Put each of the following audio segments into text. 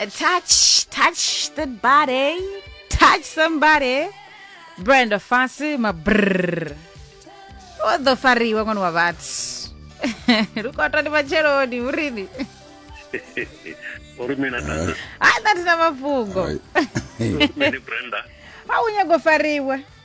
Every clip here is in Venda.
touch, touch the body, touch somebody. Brenda Fassie, ma brrr. O ḓo fariwa ṅwana wa vhathu. Lukota ndi matsheloni, urini. uri mina tata Ai, that is na mafhungo. Ai. uri mini brenda A u nyago fariwa.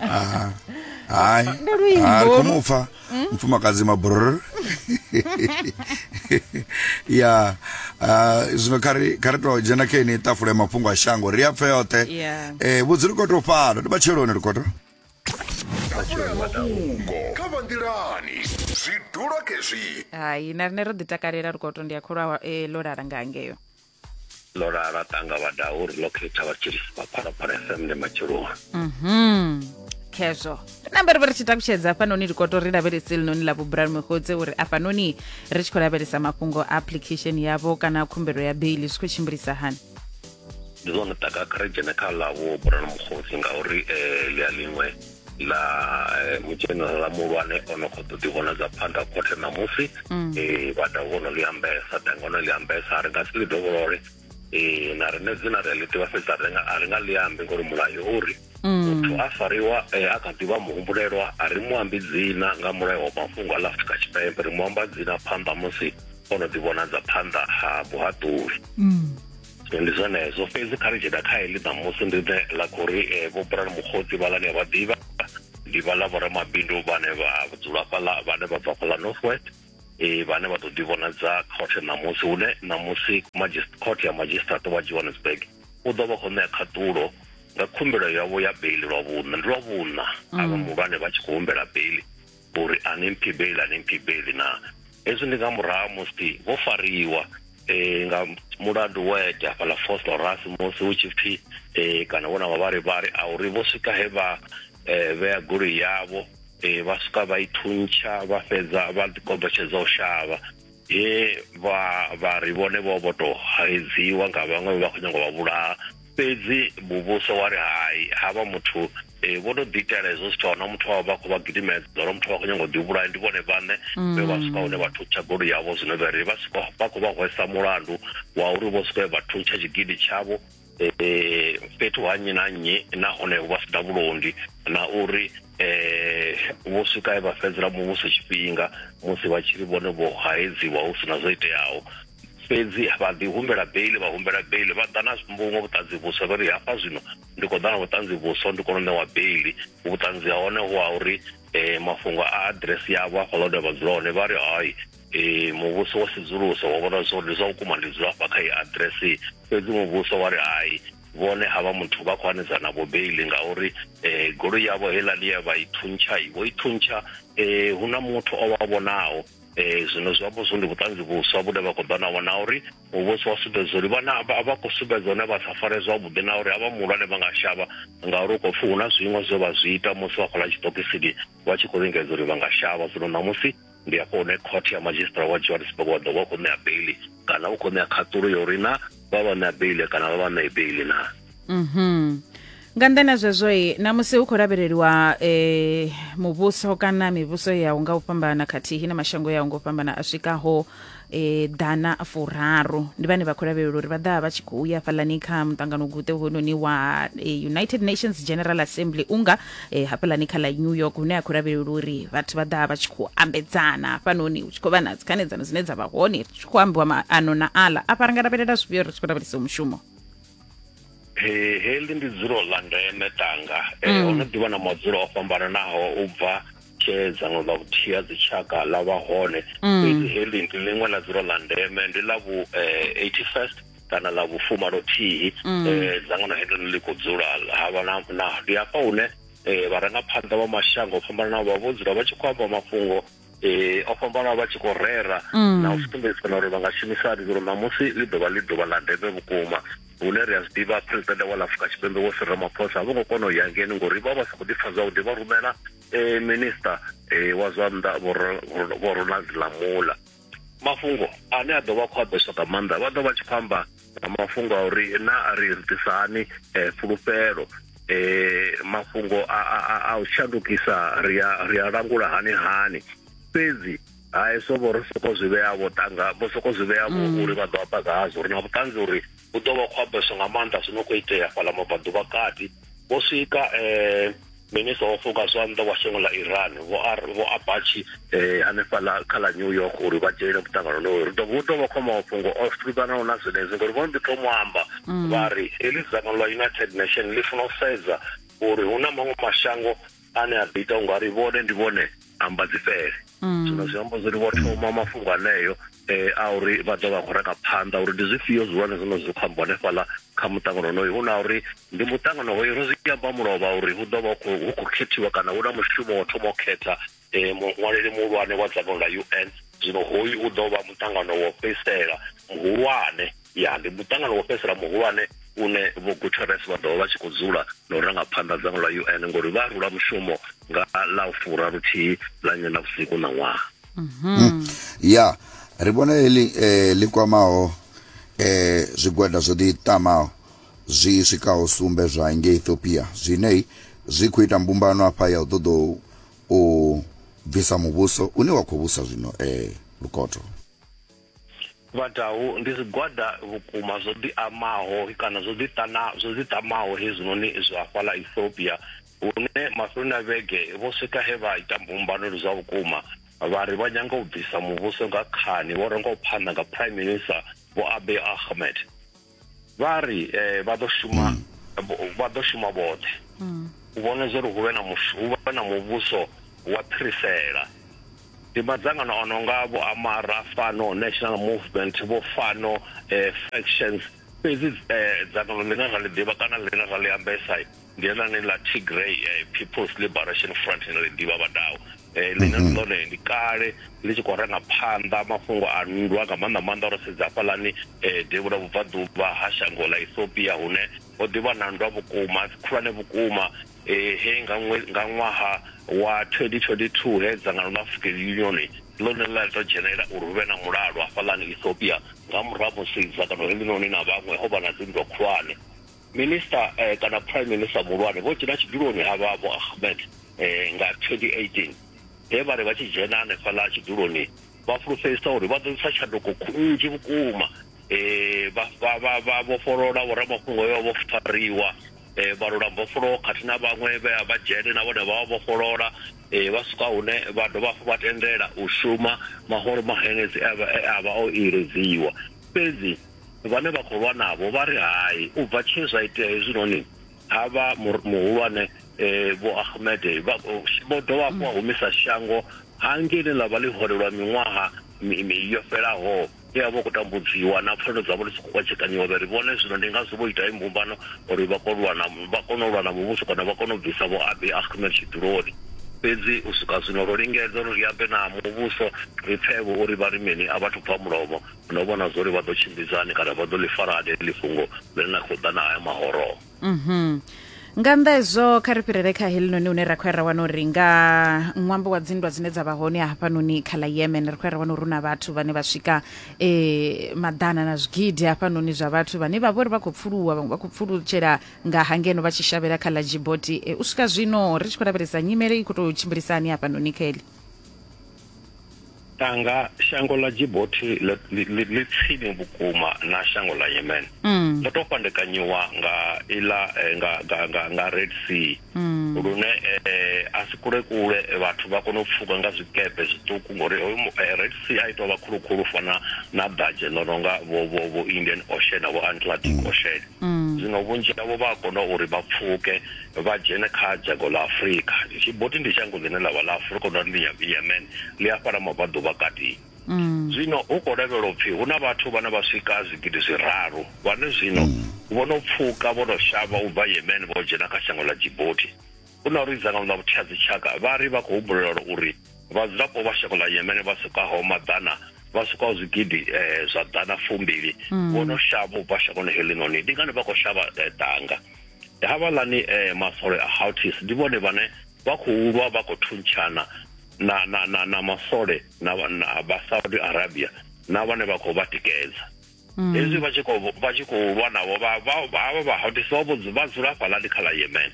Ah, hayi Ndo luimbo Ah, ri khou olu. mu pfa mufumakadzi mabrr ya ah, zwino kha ri kha ri tou dzhena kha ini tafula ya mafhungo a shango ri a pfe yoṱhe Yeah. Eh, vhudzi likoto fhano ndi matsheloni likoto mafhungo kha vha nḓilani zwi dula khezwi hai na rine ro ḓi takalela lukoto ndi a kholwa eh, ḽo lala nga ngeo ndo lala tanga vha daa uri ḽo khetha vha tshi vha phalaphala fm ndi matsheloni Mhm. khezwo namba ri vha ri tshi takutshedza hafhanoni likoto ri lavhelese linoni ḽa vhubrani mugodze uri afhanoni ri tshi khou lavhelesa mafhungo a application yavho kana khumbelo ya beili zwi khou tshimbilisa hani ndi zwone taka kha ri dzhene kha ḽa vho burana mukhosi ngauri um ḽi a ḽiṅwe na eh, mudzhenerala muhulwane o no khou ḓo ḓivhonadza phanḓa khothe ṋamusi um vhada vho no ḽi ambesa danga o no ḽi ambesa a ri nga si ḽi dovholole um na rine dzina ri a ḽi ḓivha fhedzi a ri nga- a ri nga ḽi ambi ngori mulayo o ri muthu a fariwa eh, a kha ḓivha muhumbulelwa a ri mu ambi dzina nga mulayo wa mafhungo a ḽa afurika tshipembe ri mu amba dzina phanḓa musi o no ḓivhonadza phanḓa ha muhaṱuli ndi zwenezwo fhedzi kha ri dzhena kha heḽi ṋamusi ndi ḓe ḽa khou ri eh, vho bulani mukgotsi vhala ni a vha ḓivha ndi vhala vhoramabindu vhane vha dzula fhaḽa vhane vha bva fhaḽa north west eh, vhane vha ḓo ḓi vhonadza khothe ṋamusi hune ṋamusi magist- khothe ya magistrate wa johannesburg u ḓo vha khou ṋea khaṱulo nga khumbelo yavho ya beili lwa vhuṋa ndi lwa vhuṋa avha muhulwane vha tshi khou humbela beili uri a ni mphibeli a ni mphibeli na hezwi ndi nga murahu musi vho fariwa eh nga mulandu wa ete hafhaḽa fourth horas musi hu tshi pfhi eh kana vhona mavharivhari a uri vho swika he vha eh vhea goloi yavho eh vha swika vha i thuntsha vha fhedza vha ḓi kombetshedza u shavha he vha vha ri vhone vho vho tou haedziwa nga vhaṅwe vha khou nyanga u vha vhulaha fhedzi muvhuso wa ri hai ha vha muthu eh, vho tou ḓiitela hezwo zwithu a huna muthu wavho vha khou vha gidimedza uri muthu vha khou nyanga u ḓihuvhulaya ndi vhone vhaṋe vhe vha swika hune vha thuntsha goloi yavho zwino vha ri vha swika vha khou vha hwesa mulandu wa uri vho swika vha thuntsha tshigidi tshavho um fhethu ha nnyi na nnyi nahone vha si na vhulondi na uri um vho swika vha fhedzela muvhuso tshifhinga musi vha tshiri vhone vho haedziwa hu si na zwo iteaho fhedzi vha ḓi humbela beili vha humbela beili vha ḓa na vhuṅwe vhuṱanzi vhuswa vha ri hafha zwino ndi khou ḓa na vhuṱanzi vhuswa ndi kone u ṋewa beili vhuṱanzi ha hone hu ha uri um mafhungo a aḓiresi yavho hafhaḽa hune vha dzula hone vha ri hai um muvhuso wa sedzulusa wa vhona zwa uri ndi zwa vhukuma ndi dzula hafha kha iyi aḓiresi fhedzi muvhuso wa ri hai vhone ha vha muthu vha khou hanedza na vho beili ngauri um goloi yavho heiḽa ḽi ya vha i thuntsha i vho i thuntsha um hu na muthu o vha vhonaho um zwino zwi amba zwo ndi vhuṱanzi vhuswa vhune vha khou ḓa navho na uri muvhuso wa sumbedza uri vhana vha khou sumbedza hone vha sa fare zwavhuḓi na uri havha muhulwane vha nga shavha ngauri u khou pfhi hu na zwiṅwe zwe vha zwi ita musi vha khou ḽa tshiṱokisini vha tshi khou lingedza uri vha nga shavha zwino ṋamusi ndi hafho hune khothe ya madzhisiṱara wa johannesburg wa ḓo vha u khou ṋea beili kana u khou ṋea khaṱulo ya uri na vha vha ṋea beili kana vha vha ṋee beili na mhm nga nḓani ha zwezwo i namusi hu khou lavheleliwa um muvhuso kana mivhuso yaho nga u fhambana khathihi na mashango yaho nga u fhambana a swikaho e, ḓana furaru ndi vhane vha khou lavhelela uri vha ḓa vha tshi khou ya hafhaḽani kha muṱangano guṱe hounoni wa e, united nations general assembly unga e, hafhaḽani kha ḽa new york hune a khou lavhelela uri vhathu vha ḓa vha tshi khou ambedzana hafhanoni hu tshi khou vha na dzikhanedzano dzine dza vha hone ri tshi khou ambiwa maano na aḽa afha ri nga lavhelela zwifhio ri tshi khou lavhelesa mushumo He, heḽi ndi dzulo ḽa ndeme tanga e, mm. ono ḓivha na madzulo o fhambananaho u bva tshee dzangano ḽa vhuthihi ha dzitshaka ḽa vha hone mm. fhedzi heḽi ndi ḽiṅwe ḽa dzulo ḽa ndeme ndi ḽa vhu 81st eh, kana ḽa vhufumalothihi mm. eh, dzangano heḽo ḽi khou dzula ha vha na ndi hafha hune eh, vharangaphanḓa vha mashango o fhambananaho vha vho dzula vha tshi khou amba mafhungo eh o fhambana vha tshi khou rera mm. na u sumbedzisana uri vha nga shumisa hani uri ṋamusi ḽi ḓovha ḽi ḓuvha ḽa ndeme vhukuma hune ri a zwi ḓivha presidente wa lafrika tshipembe wo sirra maphosa a vho ngo kona u ya ngeni ngori vha vha sa khou ḓipfa zwavhuḓi vha rumela um minista um wa zwa nnḓa vho ronald lamula mafhungo ane a ḓo vha khou a ḓo soka maanḓa vha ḓo vha tshi khou amba na mafhungo a uri na a ri ḓisa hani eh, fhulufhelo eh, mafhungo a u shandukisa ri a langula hani hani fhedzi hai so vho ri soko zwi vhea vho tanga vho soko zwi vhea vho mm. uri vha ḓo amba ngazwo ri na vhuṱanzi uri u ḓo vha khou ambeswa nga maanḓa zwi no khou itea fhaḽa mabvaḓuvha kati vho swika eh minista o fuka zwanḓa wa shango ḽa iran vho vho abachi eh hanefhaḽa kha ḽa new york uri vha dzhenele muṱangano lowo ri dovha u tovha khoma mafhungo o fhiranaho na zwenezwi ngori vho mbi thoma amba mm. vha ri heḽi dzangano ḽa united nation ḽi funa u sedza uri hu na maṅwe mashango ane a ḓo ita unga ri vhone ndi vhone amba dzi fhele mm. zwino zwi amba zwori vho thoma mafhungo aneyo um a uri vha ḓo vha khou raka phanḓa uri ndi zwifhio zwihulwane zwino zwi khou amba hanefhaḽa kha muṱangano onoyo hu na uri ndi muṱangano hoyo ro zwi amba mulovha uri hu ḓo vha hu khou khethiwa kana hu na mushumo wo thoma u khetha um muṅwaleli muhulwane wa dzangano ḽa u n zwino hoyu u ḓo vha muṱangano wo fhedzisela muhulwane ya ndi muṱangano wo fhedzisela muhulwane une vho guterres vha ḓovha vha tshi khou dzula na u ranga phanḓa dzango ḽa un ngori vha rula mushumo nga ḽa u fura luthihi ḽa nywe na vhusiku na ṅwaha mhm. ya ri vhona heḽi um eh, ḽi kwamaho um eh, zwigwada zwo ḓi tamaho zwi swikaho sumbe zwa nge ethiopia zwine zwi khou ita mbumbano afha ya u ṱoḓa u bvisa muvhuso une wa khou vhusa zwino um lukoto Vhadau ndi zwigwada vhukuma zwo ḓiamaho kana zwo ḓiṱana zwo ḓiṱamaho hezwinoni zwa hafhaḽa Ethiopia hune mafheloni a vhege vho swika he vha ita mbumbano ndi zwa vhukuma vha ri vha nyanga u bvisa muvhuso nga khani vho rengaho phanḓa nga Prime Minister Vho Abiy Ahmed. vha ri eh, vha ḓo shuma mm. vha ḓo shuma vhoṱhe mm. u vhona zwo ri hu vhe na hu vhe na muvhuso wa phirisela ndi madzangano a no nga vho amara fano national movement vho fano eh, factions fhedzi eh, dzangano ḽine ra ḽi ḓivha kana ḽine ra ḽi ambesa ndi heḽani ḽa tigray eh, people's liberation front ine ri ḓivha vhadau eh, ḽine mm-hmm. ḽone ndi kale ḽi tshi khou ranga phanḓa mafhungo a nndwa nga maanḓa maanḓa ro sedza hafhaḽani eh, devhula vhubvaḓuvha ha shango ḽa ethiopia hune ho ḓivha na nndwa vhukuma dzi khulwane vhukuma he nga ṅwaha wa 2022 he dzangano ḽa african union ḽone ḽa ḽi to dzhenelela uri hu vhe na mulalo hafhaḽani ethiopia nga murahu musi dzangano heḽinoni na vhaṅwe ho vha na dzinndwa khulwane Minisiṱa kana Prime Minister muhulwane vho dzhena tshiduloni ha vha Vho Ahmed nga 2018 he vha ri vha tshi dzhena hanefhaḽa tshiduloni vha fhulufhedzisa uri vha ḓo ḓisa tshanduko nnzhi vhukuma vha vhofholola vhoramafhungo vhe vha vho fariwa vha lula mbofholowo khathihi na vhaṅwe vhe a vha dzhene na vhone vha vha vhofholola vha swika hune vha dovha hafhu vha tendela u shuma mahoro mahanedzi e a vha o iledziwa fhedzi vhane vha khou lwa navho vha ri hai u bva tshe zwa itea hezwinoni ha vha muhulwane eh, vho Ahmed eh, vha vho dovha hafhu a mm. humisa shango hangei ḽe ḽa vha ḽi hone lwa miṅwaha yo fhelaho e a vha khou tambudziwa na pfanelo dzavho ḽi si khou kwatshekanyiwa vha ri vhone zwino ndi ngazwo vho ita imbumbano uri vha kone lwana vha kone u lwa na muvhuso kana vha kone u bvisa vho abi ahmed tshiduloni fhedzi u swika zwino ro lingedza uri ri ambe na muvhuso ri pfevho uri vha ri mini a vhathu bva mulomo no vhona zwa uri vha ḓo tshimbidza hani kana vha ḓo ḽi fara hani heḽi fhungo ḽine na khou ḓa na haya mahoroho mhm. nga nnḓa hezwo kha ri fhirele kha helinoni hune ra khou ya ra wana uri nga ṅwambo wa dzinndwa dzine dza vha hone hafhanoni kha ḽa yemen ri khou ya ra wana uri hu na vhathu vhane vha swika um maḓana na zwigidi hafhanoni zwa vhathu vhane vha vho ri vha khou pfuluwa vhaṅwe vha khou pfulutshela nga hangeno vha tshi shavhela kha ḽa jiboti eh, u swika zwino ri tshi khou lavhelesa nyimele i khou tou tshimbilisa hani hafhanoni kha heḽi tanga shango ḽa Djibouti ḽi tsini vhukuma na shango ḽa Yemen mm. ḽo tou fhandekanyiwa nga iḽa eh, nga nga nga nga Red Sea mm. lune eh, a si kule kule vhathu vha kona u pfuka nga zwikepe zwiṱuku ngori eh, Red Sea a tou vha khulu khulu fana na dadzhe ḽo nonga vho vho vho Indian Ocean na vho Atlantic mm. Ocean mm. zwino vhunzhi havho vha a kona uri vha pfuke vha dzhene kha dzhango ḽa Afurika. Djibouti ndi dzhango ḽine ḽa vha ḽa Afurika na ḽi Yemen, ḽi hafha ḽa mabvaḓuvhakati. Zwino hu khou lavhelelwa u pfi hu na vhathu vhane vha swika zwigidi zwiraru vhane zwino vho no pfuka vho no shavha u bva Yemen vho dzhena kha shango ḽa Djibouti. Hu na uri dzangano ḽa vhutheadzitshaka vha ri vha khou humbulelwa uri vhadzulapo vha shango ḽa Yemen vha swikaho maḓana vha swikaho zwigidi zwa ḓana fumbili vho no shavha u bva shangoni heḽinoni. Ndi ngani vha khou shavha danga? havhaḽani um masole a houtis ndi vhone vhane vha khou lwa vha khou thuntshana na na na na masole na na vha Saudi Arabia na vhane vha khou vha tikedza mm. hezwi vha tshi khou vha tshi khou lwa navho vha vha vha vha houtis vha vho vha dzula hafhaḽani kha ḽa Yemen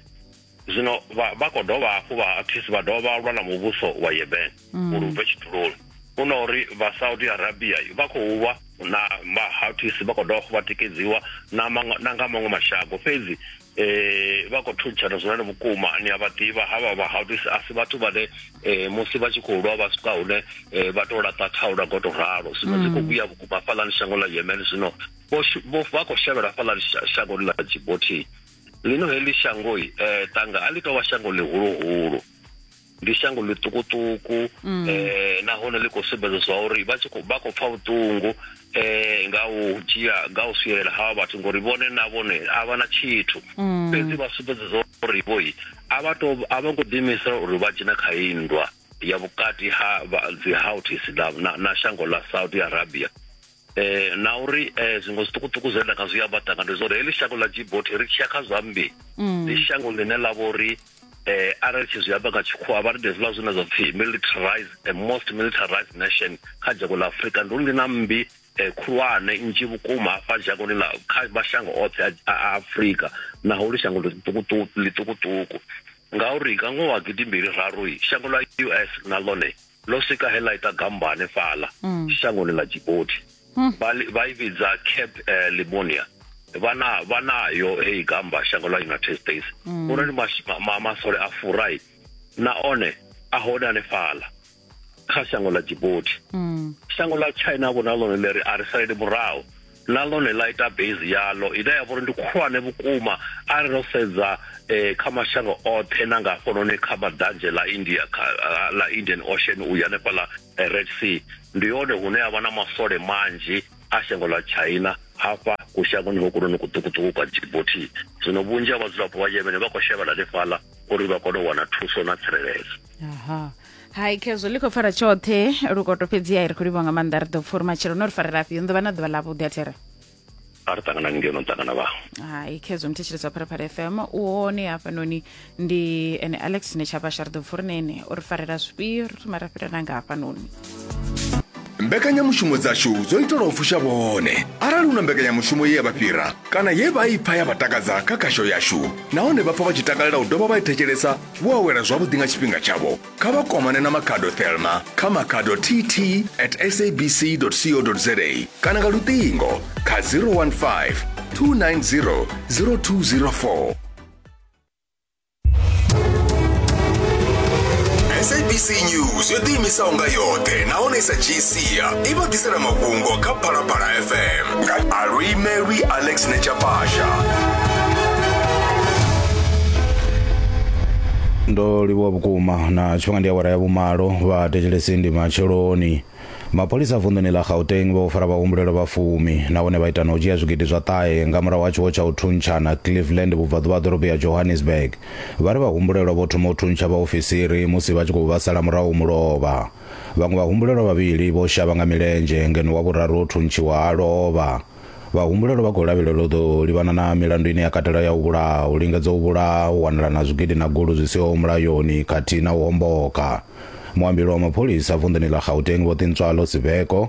zwino vha vha khou dovha hafhu vha houtis vha dovha vha lwa na muvhuso wa Yemen mm. uri u bve tshituloni u na uri vha saudi arabia vha khou vha na mahatis vha khou dovha vha tikedziwa na nga maṅwe mashango fhedzi eh vha khou thuntshana zwone vhukuma ni a vha ḓivha ha vha vha haudisi a si vhathu vhane eh musi vha tshi khou lwa vha swika hune eh, vha tou laṱa thaula ngo to ralo zwino dzi khou mm. vhuya vhukuma hafhaḽani shango ḽa yemen zwino vha khou shavhela hafhaḽani shangoni ḽa djiboti lino heḽi shangoi um eh, tanga a ḽi tou vha shango ḽihuluhulu ndi shango ḽiṱukuṱuku mm. eh nahone ḽi khou sumbedza zwa uri vha tshi vha khou pfa vhuṱungu eh nga u dzhia nga u swielela hawa vhathu ngori vhone na vhone a vha na tshithu mm. fhedzi vha sumbedza zwa uri vho a vha to a vha ngo ḓiimisa uri vha dzhena kha iyi nndwa ya vhukati ha dzi houthis na shango ḽa saudi arabia eh na uri eh zwiṅwe zwiṱukuṱuku zwe nda nga zwi amba tanga ndi zwori heḽi shango ḽa djiboti ri tshiya kha zwambi mm. ndi shango ḽine ḽa vha uri eh arali tshi zwi amba nga tshikhuwa vha ri hezwiḽa zwine zwa pfhi militarized a most militarized nation kha dzhango ḽa afurika ndi uri ndi na mmbi eh, khulwane nnzhi vhukuma hafha dzhangoni ḽa kha mashango oṱhe a afurika naho ḽi shango ḽiṱukuṱuku ngauri nga ṅwaha wa gidi mbili raru shango ḽa us na ḽone ḽo swika he ḽa ita gambani fhaḽa mm. shangoni ḽa Djibouti mm. vha i vhidza Cape eh, Limonia vhana vhanayo heyi gamba shango ḽa United States mm. uri ndi masole a furai na one a hone ane fhala kha shango ḽa Djibouti mm. shango ḽa China vho na ḽone ḽi ri a ri salele murahu na ḽone ḽa ita base yaḽo ine ya vhori ndi khulwane vhukuma arali ro sedza eh, kha mashango oṱhe na nga hafhanoni kha maḓanzhe ḽa india ah, ḽa indian ocean u ya hanefhaḽa eh, red sea ndi hone hune ha vha na masole manzhi a shango ḽa china hafha kushangoni hokunoni kuṱukuṱuku kwa djibouti zwino vhunzhi ha vhadzulapo vha yemen vha khou shavhela hanefhaḽa uri vha kone u wana thuso na tsireledzo hai khezwo ḽi khou pfara tshoṱhe lukoto fhedzi ai ri khou livha nga maanḓa ri ḓo pfa uri matshelo no ri farela afhi ndo vha na ḓuvha ḽavhuḓi a there a ri ṱangana ni ngeno ṱangana vha hai khezwo mthetsheledzwa pharaphala fm u hone hafhanoni ndi ene alex ne tshabasha ri ḓo pfa uri nene o ri farela zwifhio ri thoma ra fhira nanga hafhanoni mbekanyamushumo dzashu dzo itelwa u fusha vhone arali hu na mbekanyamushumo ye ya vha fhira kana ye vha i pfa ya vha takadza kha khasho yashu nahone vha pfa vha tshi takalela u dovha vha i thetshelesa vho awela zwavhuḓi nga tshifhinga tshavho kha vha kwamane na makhado thelma kha makhado tt at sabc co za kana nga luṱingo kha 015 290 0204 sabc news yo ḓiimisaho nga yoṱhe nahone i sa dzhii sia i vha ḓisela mafhungo kha phalaphala fm Alui Mary Alex Nechapasha. ndo livhuwa vhukuma na tshifhinga ndi awara ya vhumalo vha thetshelesi ndi matsheloni mapholisa vunḓuni ḽa gauteng vho fara vhahumbulelwa vha fumi nahone vha ita na u dzhia zwigidi zwa ṱahe nga murahu ha tshiwo tsha u thuntshana cleveland vhubvaḓuvha ha ḓorobo ya johannesburg vha ri vhahumbulelwa vho thoma u thuntsha vhaofisiri musi vha tshi khou vhasala murahu mulovha Vhaṅwe vhahumbulelwa vhavhili vho shavha nga milenzhe ngeno wa vhuraru o thuntshiwa a lovha. Vhahumbulelwa vha khou lavhelelwa u ḓo livhana na milandu ine ya katela ya u vhulaha, u lingedza u vhulaha, u wanalana zwigidi na gulu zwi siho mulayoni khathihi na u homboka. Muambeli wa mapholisa vunḓuni ḽa Gauteng Vho Tintswalo Sibeko,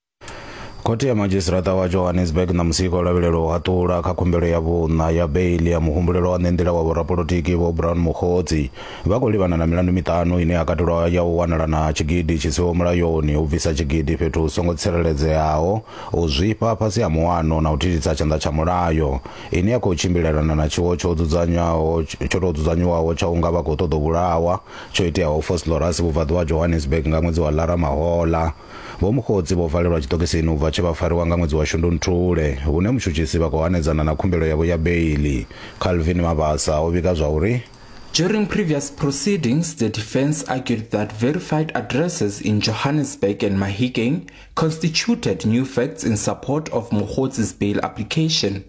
khothe ya madzhisitirata wa johannesburg na musiko o lavhelelwa u haṱula kha khumbelo ya vhuṋa ya beili ya muhumbulelo wa ṋenḓila wa vhorapolotiki vho brown mukhodzi vha khou livhana na milandu miṱanu ine ya katelwa ya u wanala na tshigidi tshi siho mulayoni u bvisa tshigidi fhethu hu songo tsireledzeaho u zwifha fhasi ha muwano na u thithisa tshanḓa tsha mulayo ine ya khou tshimbilelana na tshiwo tsho dzudzanywaho tsho tou dzudzanywaho tsha unga vha khou ṱoḓa u vhulawa tsho iteaho foslorus vhubvaḓuvha ha johannesburg nga ṅwedzi wa lara mahola Vho Mokgotsi vho valelwa tshiṱokisini u bva tshe vha fariwa nga ṅwedzi wa Shundunthule, hune mutshutshisi vha khou hanedzana na khumbelo yavho ya beiḽi. Calvin Mabasa o vhiga zwa uri. During previous proceedings, the defence argued that verified addresses in Johannesburg and Mahikeng constituted new facts in support of Mokgotsi's bail application.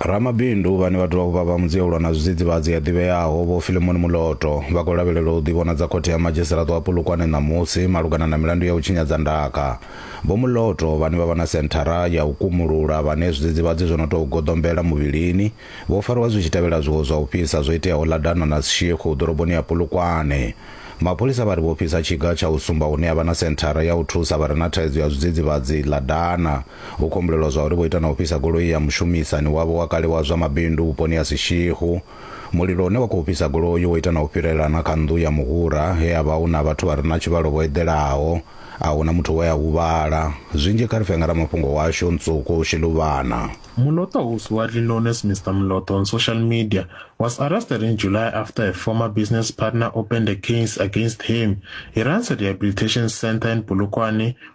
ramabindu vhane vha dovha vha vha mudziyelwa na zwidzidzivhadzi ya ḓivheaho vho filemoni muloto vha khou lavhelelwa u ḓivhonadza khothe ya madzhisiṱiraṱo wa polokwane ṋamusi malugana na milandu ya u tshinyadza ndaka vho muloto vhane vha vha na senthara ya u kumulula vhane zwidzidzivhadzi zwo no tou goḓombela muvhilini vho fariwa zwi tshi tevhela zwiwo zwa u fhisa zwo iteaho ḽa dana na sishikhu ḓoroboni ya polokwane mapholisa vha ri vho fhisa tshiga tsha u sumba hune ha vha na senthara ya u thusa vha re na thaidzo ya zwidzidzivhadzi ḽa dana Hu khou humbulelwa zwauri vho ita na u fhisa goloi ya mushumisani wavho wa kale wa zwa mabindu vhuponi ha Sishihu. Mulilo une wa khou fhisa goloi wo ita na u fhirela na kha nnḓu ya muhura he ha vha hu na vhathu vha re na tshivhalo vho eḓelaho. A hu na muthu we a huvhala. Zwinzhi kha ri fhe nga ramafhungo washu, Ntsuku Shiluvhana. Muloto whose widely known as Mister Muloto on social media was arrested in July after a former business partner opened a case against him. He runs a rehabilitation centre in Polokwane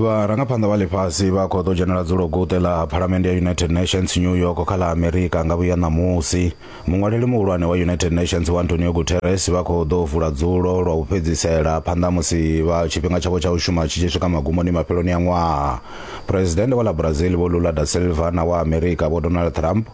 vharangaphanḓa vha ḽifhasi vha khou ḓo dzhenela dzulo guṱe ḽa phalamende ya united nations new york kha ḽa amerika nga vhuya ṋamusi muṅwaleli muhulwane wa united nations wa antonio guterres vha khou ḓo vula dzulo lwa u fhedzisela phanḓa musi vha tshifhinga tshavho tsha u shuma tshi tshi swika magumoni mafheloni a ṅwaha presidennde wa ḽa brazil vho lula da silva na wa amerika vho donald trump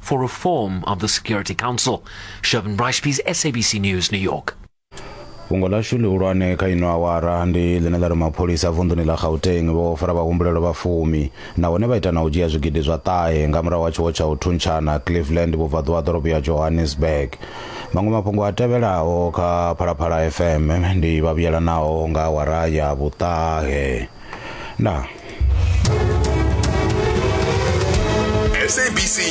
for reform of the Security Council. Shervin Brashpies, SABC News, New York. fhungo ḽashu ḽihulwane kha ino awara ndi ḽine ḽa ri mapholisa a vunḓuni ḽa gauteng vho fara vhahumbulelwa vha fumi nahone vha ita na u dzhia zwigidi zwa ṱahe nga murahu ha tshiwo tsha u thuntshana cleveland vhubvaḓuvha ha ḓorobo ya johannesburg maṅwe mafhungo a tevhelaho kha phalaphala fm ndi vhavhuyelanaho nga awara ya vhuṱahe ndaa SABC